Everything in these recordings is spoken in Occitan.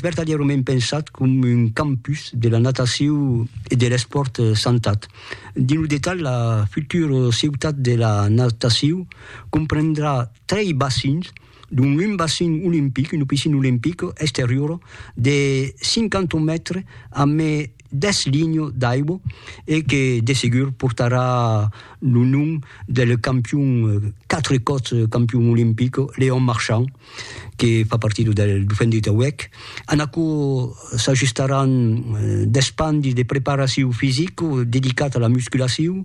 vertadièrament pensat com un campus de la nataciu e de l'espòrt santat. Dins lo detalh, la futura ciutat de la nataciu comprendrà trei bacins, dont un bacin olimpic, una piscina olimpica exteriora de 50 mètres amb 10 linhas d'aigua e que de segur portarà lo nom del campion, quatre còps campion olimpic, Léon Marchand. que fa partida del Dofendri Tauèc. En aquò s'ajustaràn d'espandi de preparacion fisica dedicat a la musculacion,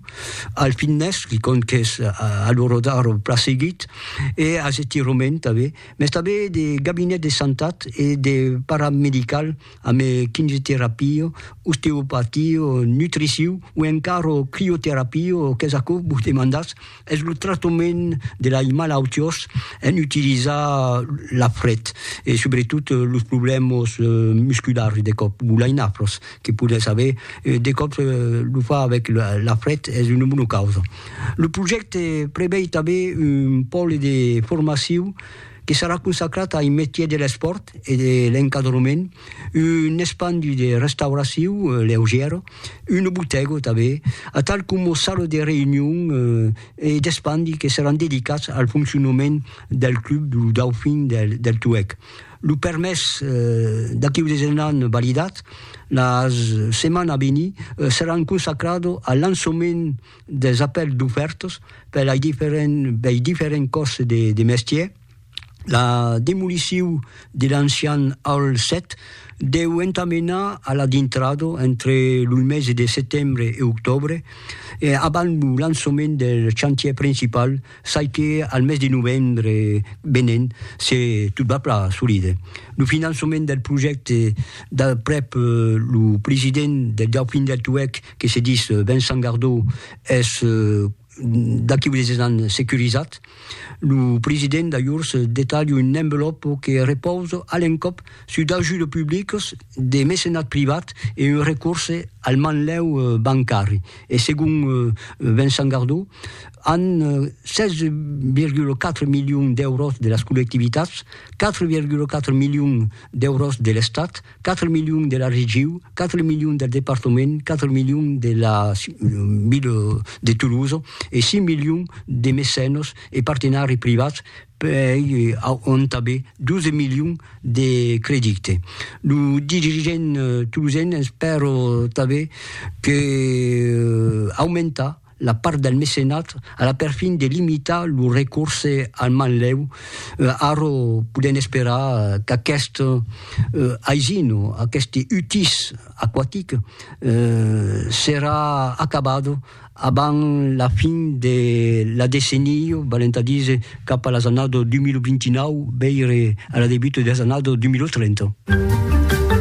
al fitness, quicòm qu'es a l'ora d'ara plan seguit, e als estirament tanben, mès tanben de gabinet de santat e de paramedical amb kinioterapia, osteopatia, nutricion o encara crioterapia, qu'es aquò vos demandatz? Es lo tractament de lei malautiós en utilizar la fret e subretot los problèmas musculars de còp, gulainafros que podètz aver, de còps lo far avèc la fret es una bona causa. Lo projècte prevei tanben un pòle de formacion que serà consacrat ai metiers de l'espòrt e de l'encadrament, Un espandu de restauraciu leugièro, un botego tanben, atal coma sala de reünion e d'espandi que seràn dedicats al foncionament del club lo Dauphin del Tuèg. Lo permés d'aqueu desenhan validat, la setmana a venir seràn consacrado al lançament dels apèls d'ofèrtas per lei diferents còrs de mestièr, La demoliciu de l'ancian Hall 7 deu entà menar a la dintrada entre lo mese de setembre e octòbre, abans lo lançament del chantièr principal, çai que al mes de novembre venent, se tot va plan, assolide lo finançament del projècte d'aprèp lo president del Dauphin del Tuèg, que se ditz Vincent Gardau, es D'aquí unes es an securizat lo president d'ajors detalha un envelòpo que repausa a l'encòp sus d'ajudes publicas, de mecenat privat e un recorse al manlèu bancari. E segon Vincent Gardot, an 16,4 milions d'èuros de las collectivitats, 4,4 milions d'èuros de l'Estat, 4 milions de la regiu, 4 milions del departament, 4 milions de la ville de Toulouse e 6 milions de mecenos e partenari privats pei auntabe 12 milions de credite. Lo dirigent toulousen espèro tanbe que aumentar la part del mecenat a la perfin de limitar lo recorse al manlèu, ara podèm esperar qu'aquest aisin, aqueste utís aquatic serà acabat abans la fin de la decennia, valent a díser cap a las annadas 2029, veire a la debuta de las annadas 2030.